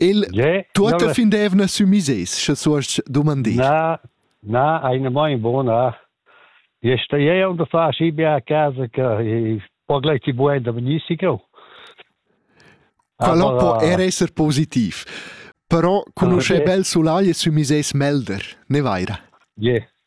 Il yeah, tuotta non... fin d'eivna sü misers, sche suost dumandir. Na, na, eine mein bona. E sta e onde fa asci bia a casa che po gleiti buena benissimo. Quello può era essere positivo. Però conosce okay. bel sulai e sü misers melder, ne vaira. Yeah.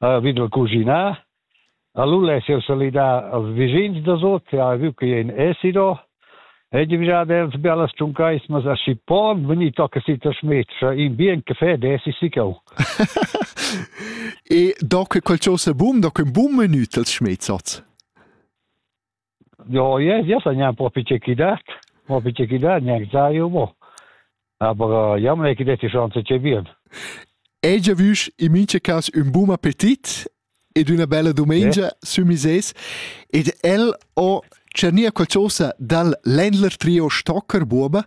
ha vid da cuginar. Allura es el salidà als vischins da sot e ha vu che in esido. E divisa dels bellas tschuncaismas a schi pon veni tocca si ta schmetscha in bien caffè desi sicau. e do che quel cho se bum, do che un bum menü tals schmezzats. Jo, yes, yes, gnà propi che chi dat, propi che chi dat, gnà zaio, bo. Aber ja, me chi detti chance che bien. Hai già visto in mince cas un buon appetit ed una bella domenica yeah. su mises ed el ho cernia qualcosa dal Ländler Trio Stocker Buoba